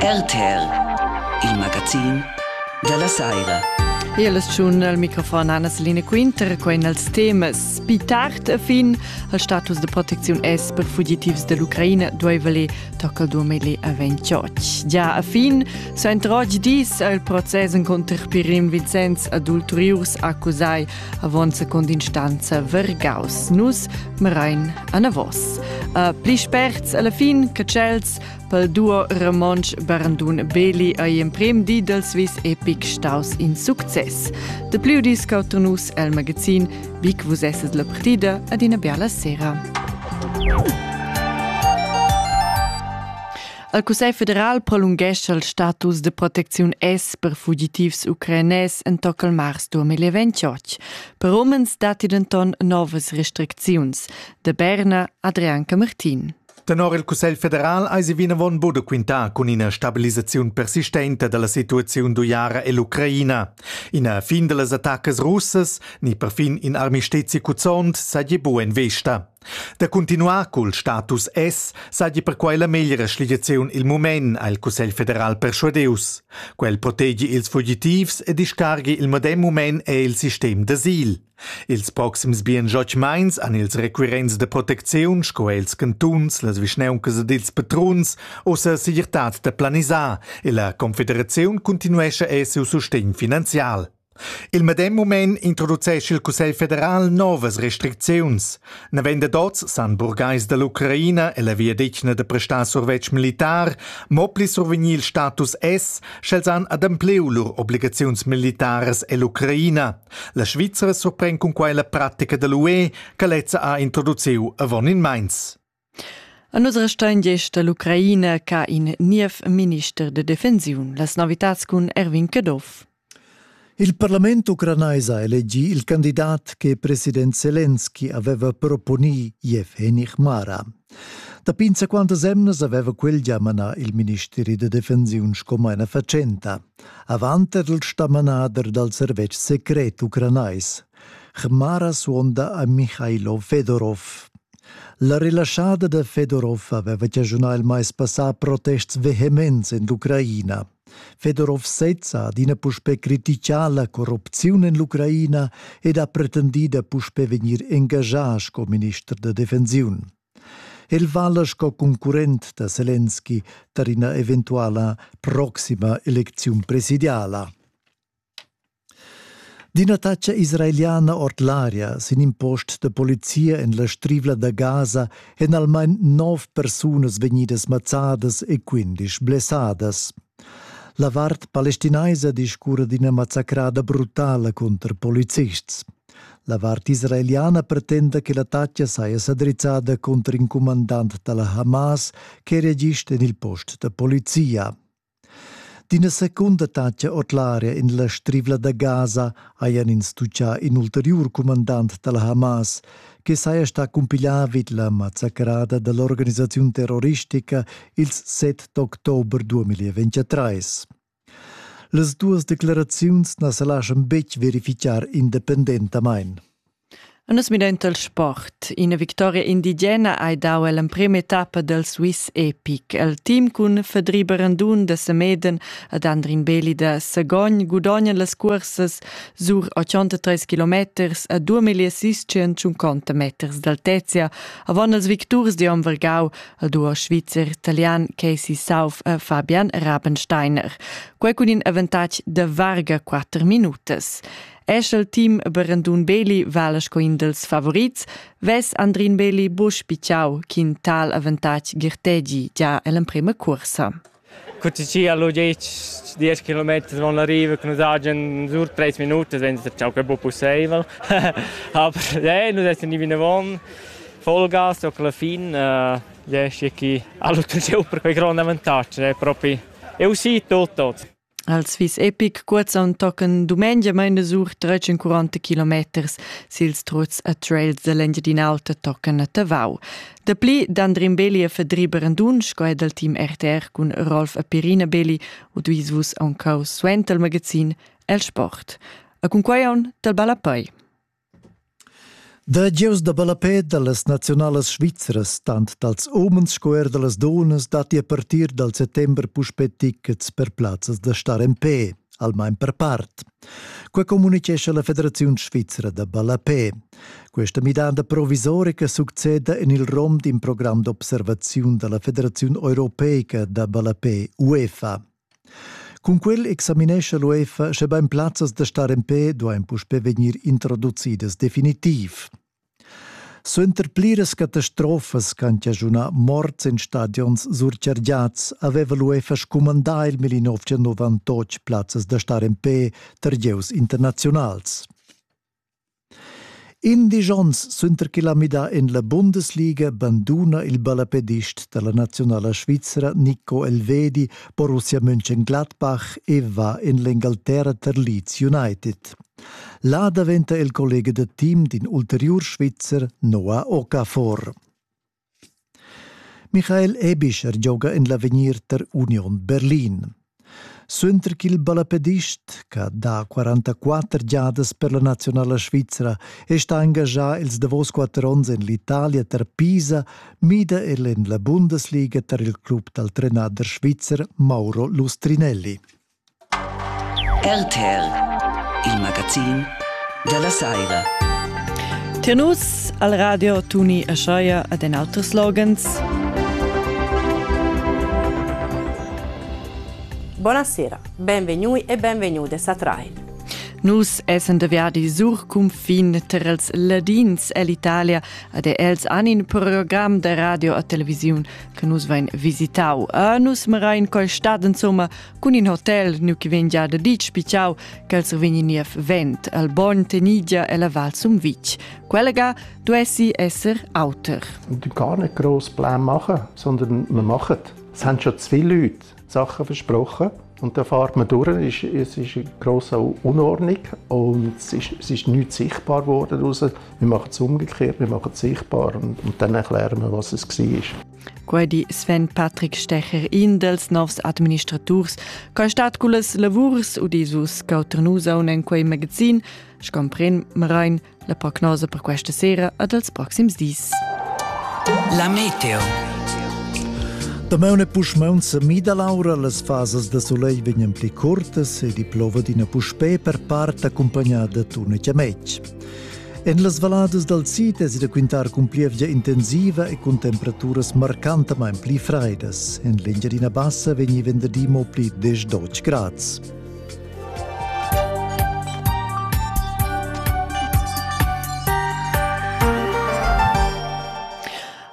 RTR, il magazin dalla saira. E la stagiun al microfon Anna Selina Quinter, quai als temas. Pi tard a fin al status de protecziun es per fugitivs dell'Ucraina dueveli tocca 2028. Già a fin s'entrog dis al proces conter Pirim Vincenz ad ulteriurs accusai avon secondinstanza vergaus nus merain anavos. Uh, pli sperts alla fin che tschels pel duo Ramonsch Barandun Beli ai emprem di del Swiss Epic staus in success. De più dis cautunus el magazin Big vus esset la partida ad ina biala sera. Il Cussegl federal prolunghescha il status de protecziun S per fugitivs ucrainès entoca il mars 2028. Per umens datti denton novas restricziuns. De Berna, Adrianca Martin. Tenor il Cussegl federal eisi vinavon buca quintà cun ina stabilisaziun persistenta dalla situaziun d'uiara ell'Ucraina. Ina fin dallas attaccas russas ni perfin in armistezi cuzzont seigi bu en vesta. Da cuntinuar cul status S seigi perquei la meglra schligiaziun il mument ha il Cussegl federal perschuadius. Quel protegi ils fugitivs e discarghi il medem mument è il sistem d'asil. Ils proxims bien joch meins han ils requirents de protecziun sco els cantuns, las vischneuncas ed ils patruns ussa segirtad da planisar e la confederaziun continuescha e siu sustegn finanzial. Il medem mument introducescha il Cussegl federal novas restricziuns. Navend d'oz san burgais dall'Ucraina e la viadetgna da prestar survetsch militar mo pli survegnir il status S, sch'els han adempliu lur obligaziuns militaras ell'Ucraina. La Svizra surpren cun quai la pratica dall'UE che lezza ha introduciu avon in meins. A nus restein gest dall'Ucraina ca in niev minister de defensiun, las novitats cun Erwin Caduff. Il parlament ucranais ha elegi il candidat che president Zelensky aveva proponì Yevgeny Hmara. Dapi insaquantas emnas aveva quel già manà il ministeri da defensiun sco maina fatschenta, avant er il stamanader dal servetsch secret ucranais. Hmara suonda a Michailo Fedorov. La relaschada da Fedorov aveva chaschunà il mais passà protests vehements en l'Ucraina. Fedorov sezza ha adina puspè crititgà la corrupziun en l'Ucraina ed ha pretendì da puspè vegnir engaschà sco minister da defensiun. El vala sco concurrent da Selenski tar ina eventuala proxima elecziun presidiala. D'ina taxa israeliana ord l'aria sin in post da polizia en la strivla da Gaza èn almain nov persunas vegnidas mazzadas e quindisch blessadas. La vart palestinaisa discurra d'ina mazzacrada brutala cunter polizists. La vart israeliana pretenda che la taxa saja sa drizzada cunter in cumandant da la Hamas che reagist en il post da polizia. D'ina secunda tatscha ord l'aria en la Strivla da Gaza hajan ins tutgà in ulteriur cumandant da la Hamas che saja stà cumpiglià vid la mazzacrada da l'organisaziun terroristica ils 7 d'october 2023. Las duas declaraziuns na sa laschan betg verifitgar independentamain. En nus midainta il sport. Ina victoria indigena hai dau ell'emprema etappa del Swiss Epic. El team cun Fedri Berendun da Semeden ed Andrin Beli da Sagogn gudognan las cursas sur 83 kilometers e 2600 meters d'altezia avon els victurs di Om Vergau, il duo svizzer-italian Casey Sauf e Fabian Rabensteiner. Quei cun in avantatg de varga 4 minutas. Eschel team Berendun Beli vala sco in dels favorits, ves Andrin Beli busch picciau ch'in tal avantatg girtegi già ell'emprema cursa. Cuticci allo 10 10 km van l'arriva che nous hagen sur 3 minuti senza ciao che buon possibile aber eh nous essen ni vinavon Vollgas och alla fin eh riesce chi allo super quei grande avantaggio è proprio è uscito tutto Els vis epic cuozzaun tocan dumengia meina sur 340 kilometers sils truts e trails dell'Engiadin'Alta tocan a Tavau. Dapli d'Andrin Belli e Fedri Brandun sco è dal team RTR cun Rolf e Pirina Belli u duis vus aunc cau suenter il magazin El Sport. E cun quai aun dal Ballapei. Da gieus da ballapè da las naziunalas svizras, tant dals umens sco er da las dunnas, datti a partir dal settember puspè tickets per plazzas da star en pe, almain per part. Quai communitgescha la Federaziun svizra da ballapè. Questa midanda provisorica succeda en il rom d'in program d'observaziun da la Federaziun europeica da ballapè UEFA. Cun quel examinescha l'UEFA schebain plazzas da star en pe duain puspè vegnir introducidas definitiv. Suenter pliras catastrofas ch'han chaschunà morts en stadions surchargiads aveva l'UEFA scumandà il 1998 plazzas da star en pe tar gieus internaziunals. Indisch ons suenter ch'el ha midà en la Bundesliga banduna il ballapedist da la naziunala svizra Nico Elvedi Borussia Mönchengladbach e va en l'Engalterra tar Leeds United. Là daventa el collega da team d'in ulteriur Svizzer, Noah Okafor. Michael Ebischer gioga en l'avegnir tar Union Berlin. Suenter ch'il ballapedist, che da 44 giadas per la nazionala svizra è stà engaschà ils davos quatter onns en l'Italia tar Pisa, mida el en la Bundesliga tar il club dal trenader svizzer Mauro Lustrinelli. RTL, il magazin dalla saira. Tir nus al radio Tuni e Scheuer ad en auters slogans. Buonasera, benvegnui e benvenude a Train. Nus essen deviadi sur cunfin ter els ladins ell'Italia ad els an in program de radio a televisiun che nus vein visitau. A nus merain col stad insomma Cun in hotel nu chi vegn già da dit spichau ch'els vegni niev vent al Bogn Tenigia e la Val Sumvitg. Quella ga duessi esser auter. Und gar nicht gross Plan machen, sondern man macht. Es haben schon zu viele Leute Sachen versprochen und da fährt man durch. Es ist, ist eine grosse Unordnung und es ist, es ist nichts sichtbar geworden. Wir machen es umgekehrt, wir machen es sichtbar und, und dann erklären wir, was es war. Quai di Sven Patrick Stecher, in dels novs administraturs, che stat cullas lavurs udisus Cauternusaun en quei magazin, scompren Marain la prognosa per questa sera ed els proxims dis. La meteo. Damaun e puschmaun se mida laura, las fasas de soleil vegnan pli curtas e di plova d'ina puspè per part accompagnada d'una chiamec. En las valladas dal sid es da quintar cun plievgia intensiva e cun temperaturas marcantamain pli fraidas. En l'Engiadina Bassa vegni venderdi mo pli 10-12 grads.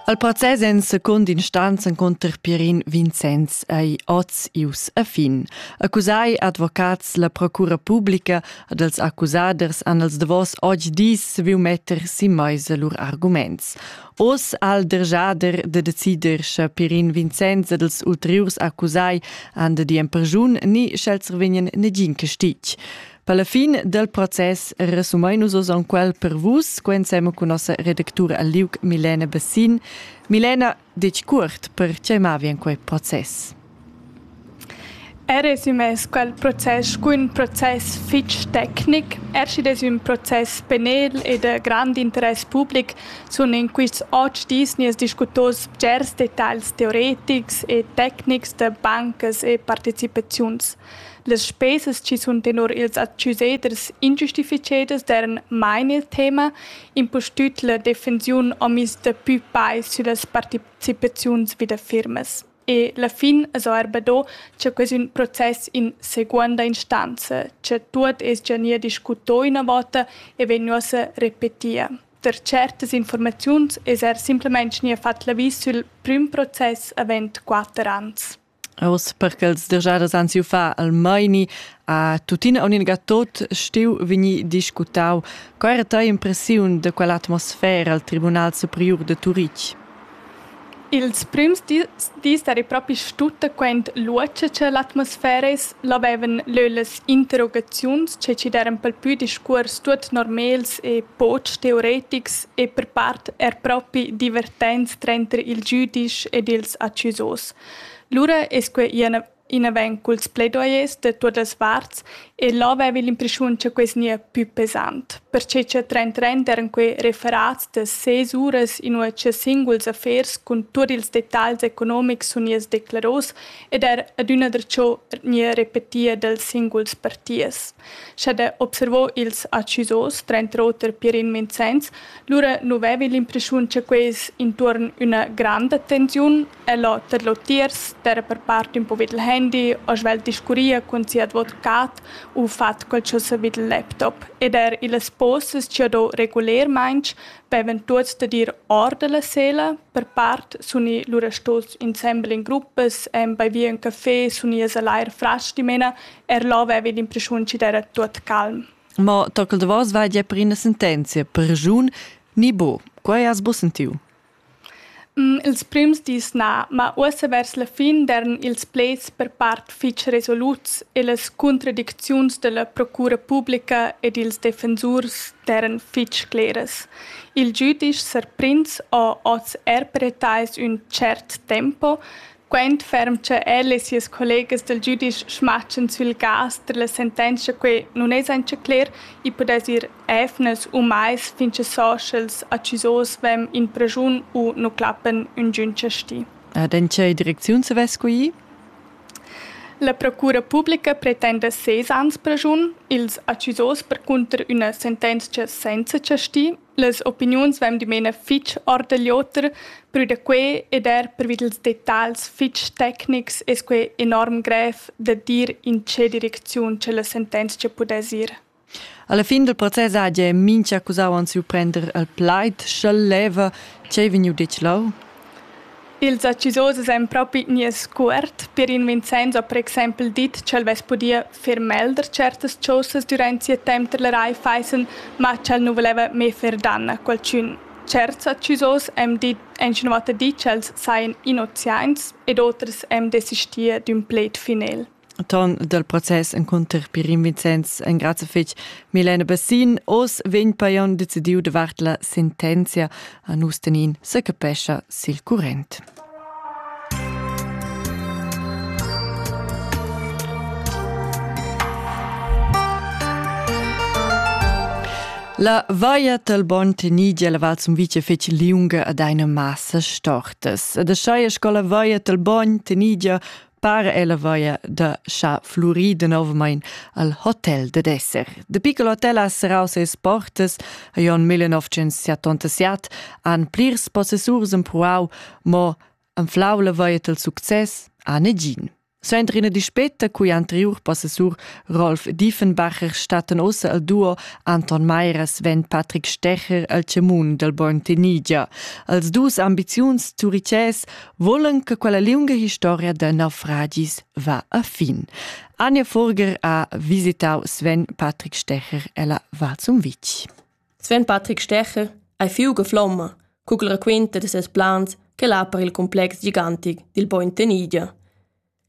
Al process en secund instanz encunter Pirin Vincenz ei oz ius a fin. Accusai advocats la procura publica ad els accusaders han els davos oggi dis viu metter si meisa lur arguments. Oz al dergiader de decider sche Pirin Vincenz ed els ulteriurs accusai han de dien pergiun ni sch'els vegnen negin castig. Per la fin del process resumein nus oz quel per vus, co ensema cun nossa redactura al liug Milena Bassin. Milena, detg cuort, per tgei mavien quei process? Er resumés quel process cu un process fitg tecnic, ercides un process penel e de grand interess public sun in quists oc dis nies discutos bgers detagls teoretics e tecnics de bancas e participaziuns. Las spesas chi sun tenor ils accuseders ingiustifichedas d'eran mai nel tema, impustüt la defensiun homis da pü pais süllas partecipaziuns vi da firmas. E la fin es eir be do cha quest ün process in seguonda instanza, cha tuot es già gnir discuto üna vota e vegnuossa repetia. Per certas informaziuns es eir simplamaing gnir fat l'avis sül prüm process avent quatter ans. Oz per ch'els dergiadas han siu far al meini ha tuttina uninga tot stiu vegni discutau. Co era tei impressiun de quell'atmosfera al Tribunal Superiur de Turitg? Ils prims dis, dis eri propi stutta quent luotscha che l'atmosfera es, l'avevan leu las interrogaziuns che ci deran pel pü discuors tuot normels e poch teoretics e per part er propi divertents tranter il giudisch ed ils accusos. Lura es quai ì inavant culs plaidoyers da tuot las varts e là vaiva l'impreschiun cha quai gnia pü pesant, perche cha trent trent eran quai referats da ses uras inua cha singuls affers cun tuot ils detagls economics sun gnits decleros ed eir adüna darcho gnia repetia dals singuls partiers. Scha da observar ils accisos, Trent Roter, Pierin Vincenz, lura nu vaiva l'impreschiun cha quai es intuorn üna granda tensiun El ho tedlò tiers terra per part ün po vi dal handy, ho svelt discurria cun sia advocat u fat quel ch'ho savü dal laptop ed eir illas sposas chi ho do regulermaing vevan tuots da dir or da la sela. Per part sun i lura stos insembel in gruppas e baivier ün café, sun i a salair fras dimena, eir là vaiva l'impreschiun chi d'eira tuot calm. Ma tochel da vos vaidja per üna sentenzia, pergiun ni bo, quai has busentiu? Ils prims dis na, ma uossa vers la fin d'eran ils pleds per part fich resoluts e las cuntradicziuns da la procura publica ed ils defensurs d'eiran fich cleras. Il giüdisch s'ha prins ho hoz er per etais ün tschert tempo, Quent ferm cha el e sias collegas dal giudisch smatschan sül cas da la sentenzcha que nun es auncha cler, i pudess ir eivnas u mais fin cha so sch'els accusos vain in praschun u nu clappan üngün chasti. Ed in che direcziun se vess scuì? La procura publica pretenda ses ans praschun, ils accusos percunter üna sentenzcha senza chasti Las opiniuns vain dimena fich or da l'oter, prü da quai ed eir pervi dals detagls fich tecnics es quai enorm grev da dir in che direcziun cha la sentenzia pudess ir. Alla fin del process hagi mincha accusau ans surprender al plaid sch'el leva ch'ei vegniu detg leu. Ils accisosos ein propi nies scuort per in Vincenzo ha per exempel dit ch'el vess pudia fer melder certas chaussas durant sia temps dalla Rai Feissen, ma ch'el nu voleva mê fer danna a qualchün. Certs accisos han dit han schon oter dit ch'els sajan innoziaints ed oters han desistia d'ün pled final. ton dal process encunter Pirin Vincenz engrazia fitg Milena Bassin. Oz vegn Pajon decidiu davart la sentenzia a nus tenin se capescha sil current. La vaia tal bon tenidia la val Sumvice fece liunga ad eine massa stortas. Ed a schaia scola vaia tal bon tenidia Par ella vaia da cha flurì denovmain al hotel ded esser. De piccolo hotel ha serrau ses portas a Jon 1977 han plirs possessurs empruau mo anflau la vaia del success a negin. Suenter ina dispeta cui anteriur possessur Rolf Diefenbacher statten ossa al duo Anton Meiras ven Patrick Stecher al cemun del Born Tenigia. Als dus ambiziuns turices volan che quella liunga historia da naufragis va a fin. Anja Furger ha visitau Sven Patrick Stecher ella Varzumwitsch. Sven Patrick Stecher ei fiuga flomma, cugl raquenta de ses plans che l'ha per il complex gigantic dil Point Tenidia.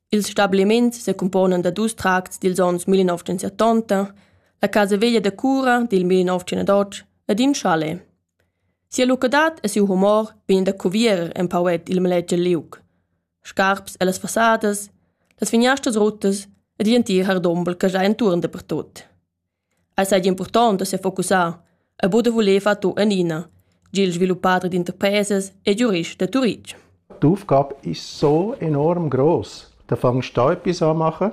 Ils stabiliments se componan da dus tracts dils ons 1970, la casa veglia da cura dil 1908 ed in chalet. Sia lucadad e siu humor vegnan da cuvierer empau ord il maleger liug. Scarps ellas fassadas, las finiastras ruttas ed igl entir hardumbel che schai entuorn dapertut. Ei seigi impurtont da sefocussar e buca voler far tu enina, gia il sviluppader d'interpresas e giurist da Turitg. D'Aufgabe ist so enorm groß. Da fangst du etwas anmachen?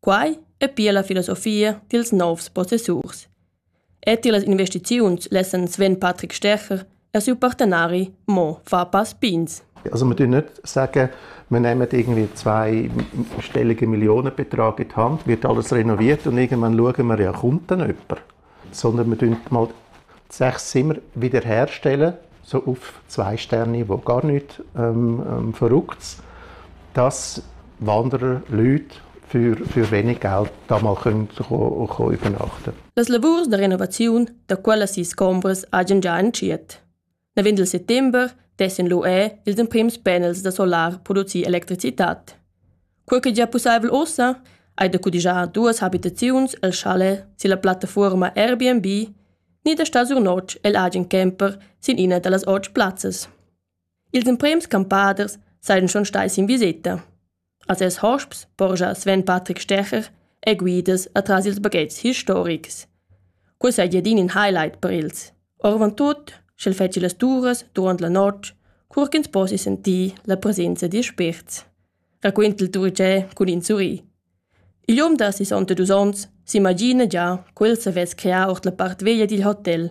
Quai è pia la filosofia dils novs possessurs. E tilas investiziuns lessan Sven Patrick Stecher e siu partenari Mo Fapas Pins. Also wir tun nicht sagen, wir nehmen irgendwie zwei stellige Millionenbetrag in die Hand, wird alles renoviert und irgendwann schauen wir, ja, kommt dann jemand? sondern wir tun mal sechs Zimmer wiederherstellen, so auf zwei Sterne, wo gar nichts ähm, ähm, Verrücktes, dass Wanderer, Leute für, für wenig Geld da mal können, können, können übernachten Das lavurs de renovaziun da quella sis combras hagen già entschiet. Navend il settember dessen lu è ils emprims panels da solar producir electricitad. Quei che gia pusseivel ossa hai da cudigiar duas habitaziuns el challe silla plattafuorma Airbnb ni da star sur notg el agen camper sin ina dallas otg plazzas. Ils emprems campaders saien schon stai sin viseta. A ses hosps porscha Sven Patrick Stecher er guidas atras ils baghetgs historics. Quei seigi adin in highlight per els. Orvon tut, sch'el fetschi las turas durant la notg, cur ch'ins possi sentir la presenza dil spért. Raquenta il Turicè cun in surri. Il um da 62 onns s'imagina gia quel savess crear ord la part veglia dil hotel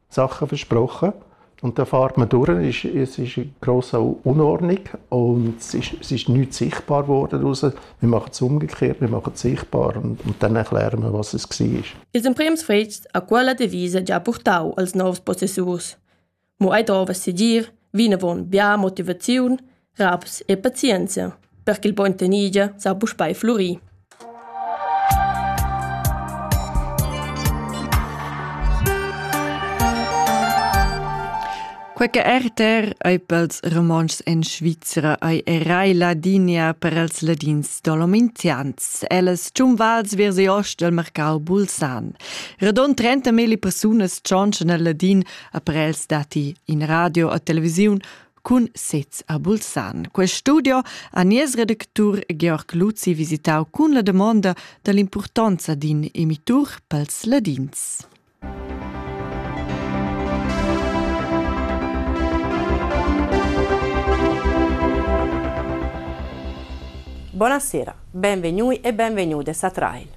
Sachen versprochen und dann fährt man durch. Es, es ist eine grosse Unordnung und es ist, es ist nichts sichtbar geworden raus. Wir machen es umgekehrt, wir machen es sichtbar und, und dann erklären wir, was es war. Ils emprims fets a quella devisa già portau als novs possessurs. Mo ei dovess dir, vinavon bia motivaziun raps e pazienzia, per ch'il bogn tenigia sa puspei flurir. Quei che RTR ei pels romanschs en Svizra ei erai Ladinia per els ladins dolomintians. Ellas tschunvals viers ost del mercau Bulsan. Radon 30.000 persunas tschonschen al ladin après els dati in radio a televisiun cun sez a Bulsan. Quest studio ha nies redactur Georg Luzi visitau cun la damonda dall'impurtonza d'in emitur pels ladins. Buonasera, benvegnui e benvenudes a Trail.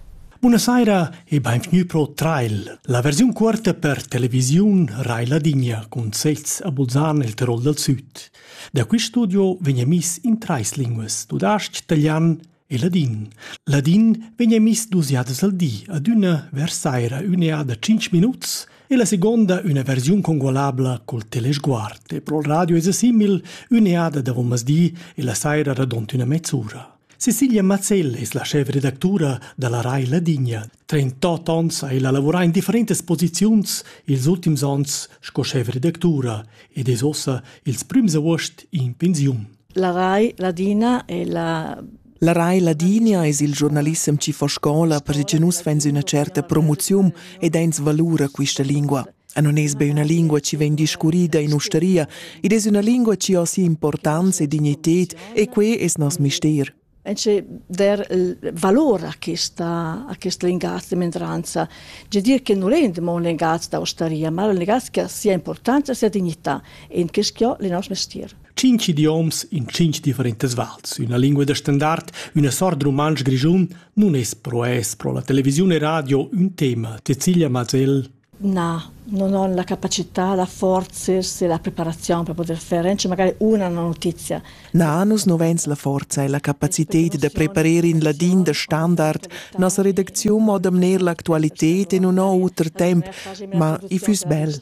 Buonasera e benvenuti pro Trail, la versiun cuorta per televisiun Rai Ladinia cun sez a Bulzan il Tirol dal Süd. Da quist studio vegn emis in trais linguas, tudasc, talian e ladin. Ladin vegn emis dus jadas al di, adüna vers saira ün'eada da 5 minuts e la seconda üna versiun congualabla col telesguard e pro radio es simil ün'eada da di e la saira radont üna mezz'ura. Cecilia Mazzell es la schefredactura da la Rai Ladinia. Trentot ons ha ella lavurà in differentas posiziuns ils ultims ons sco schefredactura ed es ossa ils prüms avuost in pensiun. La Rai Ladina è la La Rai Ladinia es il giornalissem chi fa scola perche nus fains üna certa promoziun ed ains valura quista lingua. E non es be üna lingua chi vegn discurrida in ustaria, id es üna lingua chi ha sia importanza e dignited e quai es nos mister. E c'è der valore a questa, a questa linguaggio di minoranza. C'è dire che non è un linguaggio d'ostaria, ma un linguaggio che ha sia importanza e sia dignità e in questo ho il nostro mestier. Cinc idioms in cinc differentes vals, una lingua da standard, una sort de romansch grischun, non es pro es pro la televisione e radio un tema, Cecilia Mazell. Na, non ho la capacità, la forza e la preparaziun per poter fer anche magari una notizia. Na, nus no vains la forza e la capacited da preparer in ladin da standard nossa redacziun mo damner l'actualited e non ho auter temp, ma i füss bel.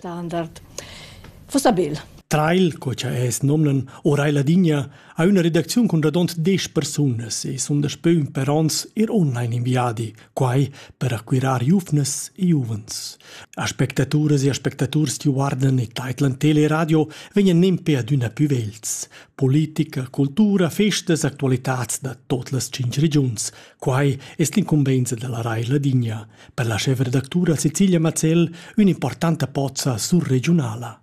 Fossa bel. Trail, co cha es nomnan, Orai Ladinia, ha üna redacziun cun radont 10 persunas e sun daspö ün per ons ir online in viadi, Quai per acquirar giuvnas e giuvens. Aspectaturas e aspectaturs ti guardan e taitlan teleradio vegnan nempe adüna pü vegls. Politica, cultura, festas, actualitads da tot las tschinch regiuns. Quai es l'incumbenza da la Rai Ladinia. Per la chefredactura Cecilia Mazzell ün'importanta pozza surregiunala.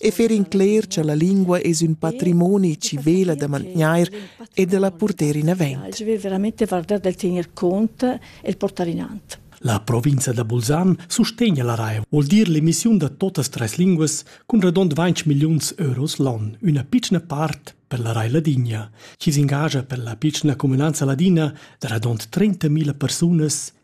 e fer incler cha la lingua es ün patrimoni chi vela da mantgnair e da la purter in avent. Je vais veramente vardar del tener conto e il portare in avanti. La provincia da Bulsan sustegna la RAI, vuol dir l'emissiun da totas tres linguas cun redond 20 miliuns euros l'on, üna piccina part per la RAI Ladinia, chi s'ingagia per la piccina comunanza ladina da redond 30.000 persunas